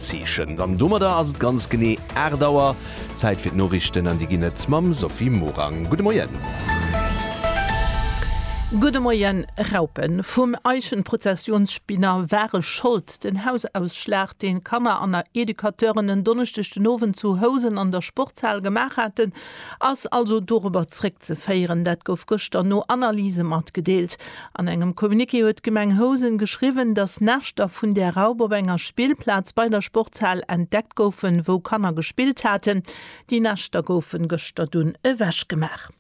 Zeechent. An domadder ass et ganz genee 8 Auer. Zäit fir d'Noriichten an déi ginn et mam Sophie Morang. Gudde Moien. Gudde Moien. Raupen vum Eichenprozessionsspinner ware Schold. Den Hausausschlag, deen Kanner an Educateuren en Donneschdeg den Owend zu Housen an der Sportshal gemaach haten, Ass also dorobber zréckzeféieren. Dat gouf gëschter no Analyse matgedeelt. An engem Communiqué huet d'Gemeng Housen geschriwwen, datt Näschter vun där Raup op enger Spillplaz bei der Sportshal entdeckt goufen, wou Kanner gespillt haten. Déi Näschter goufe gëschter dunn ewechgemaach.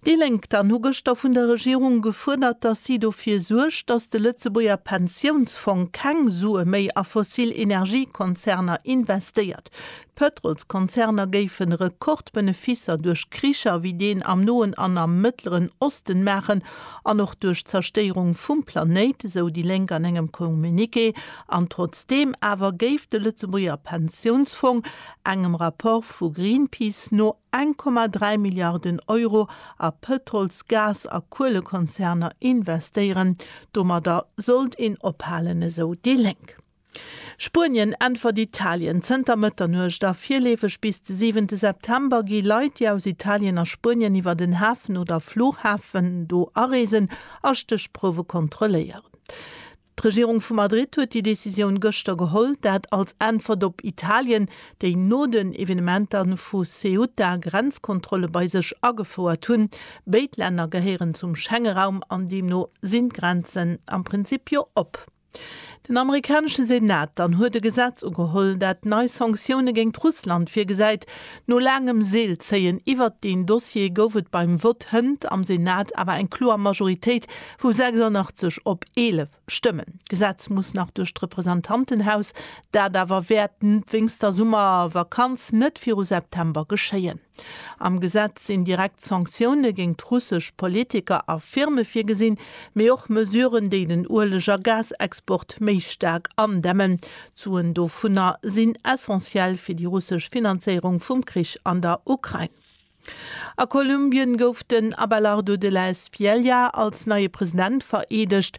Déi Lénk dann hu gëschter vun der Regierung gefuerdert, datt si dofir suergt, datt de Lëtzebuerger Pensiounsfong keng Sue méi a fossil Energiekonzerner investéiert. D'Pëtrolskonzerner géifen Rekordbeneficer duerch Kricher wéi deen am Noen an am Mëttleren Osten maachen an och duerch d'Zerstéierung vum Planéit, esou déi Lénk an engem Communiqué. An trotzdeem awer géif de Lëtzebuerger Pensiounsfong engem Rapport vu Greenpeace no 1,3 Milliarden Euro a Pëtrols-, Gas a Kuelekonzerner investéieren. Domadder sollt een ophalen, esou déi Lénk. Spuenien äntwert Italien zënter Mëtternuecht a virleefeg bis de siwente September gi Leit, déi aus Italien a Spuenien iwwer den Hafen oder Fluchhafen do areesen a Stéchprouwe kontrolléieren. D'Regierung vu Madrid huet déi Decisioun gëschter geholl, dat als Äntwert op Italien, déi no den Evenementer vu Ceuta Grenzkontrolle bei sech agefouert hunn. Béid Länner gehéieren zum Schengeraum an deemno sinn d'Grenzen am Prinzip jo op. Den amerikanesche Senat dann huet e Gesetz ugeholl, dat nei Sanktioune géingt Russland virgesäit. No laangem Seelzéien iwwert deen Dossier gouf et beim Vott hënt am Senat awer eng kloer Majoritéit vu 86 op 11 Stëmmen. D'Gesetz muss nach duerch d'Representantenhaus, dat awer wäert wéinst der Summervakanz net viru September geschéien. Am Gesetz sinn direkt Sanktioune géint d'russesch Politiker a Firme virgesinn, mee och Mesuren, déi den Ueleg a Gasexport méi staark andämmen. D'Suen dovunner sinn essentiell fir déi russesch Finanzéierung vum Krich an der Ukrain. A Kolumbien gouf den Abelardo de la Espriella als neie President vereedegt.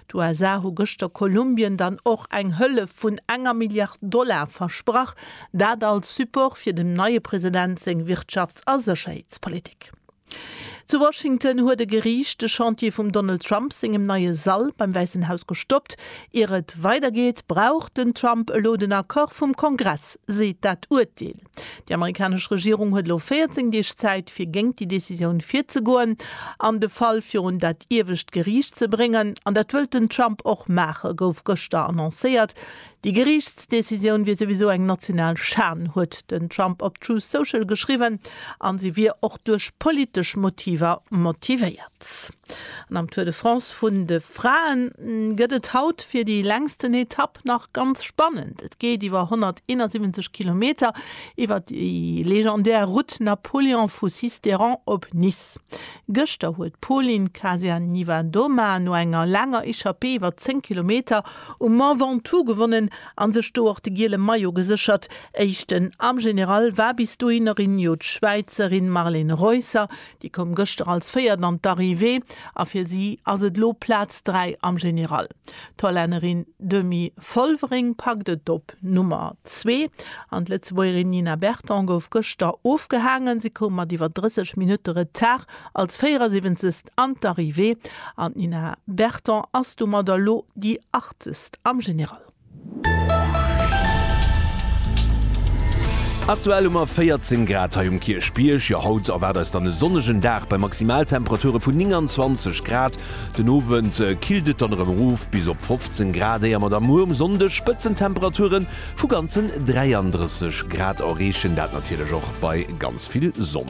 D'USA hu gëschter Kolumbien dann och eng Hëllef vun enger Milliard Dollar versprach, dat als Support fir dem neie President seng Wirtschafts a Sécherheetspolitik. Zu Washington huet e Geriicht de Chantier vum Donald Trump sengem neie Sall beim Wäissen Haus gestoppt. Ier et weidergeet, brauch den Trump elo den Accord vum Kongress, seet dat Urteel. Déi amerikanesch Regierung huet elo 14 Deeg Zäit, fir géingt déi Decisioun virzegoen an de Fall virun dat iewescht Geriicht ze bréngen. An dat wëllt den Trump och maachen, gouf gëschter annoncéiert. Déi Geriichtsdecisioun wier souwisou eng national Schan, huet den Trump op Truth Social geschriwwen, a se wier och duerch politesch Motiver motivéiert. März. An am Tour de France vun de Fraen gëtt et haut fir déi längsten Etapp nach ganz spannend. Et geet iwwer 171 Kilometer iwwer déi legendär Route Napoléon vu Sisteron op Nice. Gëschter huet d'Pauline Kasia-Niewiadoma no enger laanger Echappée iwwer 10 Kilometer um Mont Ventoux gewonnen a sech do och de giele Maillot geséchert. Éischten am General war bis dohinner jo d'Schwäizerin Marlene Reusser, Déi koum gëschter als Véiert an d'Arrivée a fir si ass et elo Plaz 3 am General. D'Hollännerin Demi Vollering packt et op Nummer zwee an d'Lëtzebuergerin Nina Berton gouf gëschter ofgehaangen. Si koum mat iwwer 30 Minutte Retard als 74. an d'Arrivée an d'Nina Berton ass domadder elo déi 80. am General. Aktuell hu mer 14 Grad hei um Kierchbierg. Jo, haut erwaart eis dann e sonnegen Dag bei Maximaltemperature vun 29 Grad. Den Owend killt et dann erëm erof bis op 15 Grad, éier mer da muer um Sonndeg Spëtzentemperature vu ganzen 33 Grad erreechen, dat natierlech och bei ganz vill Sonn.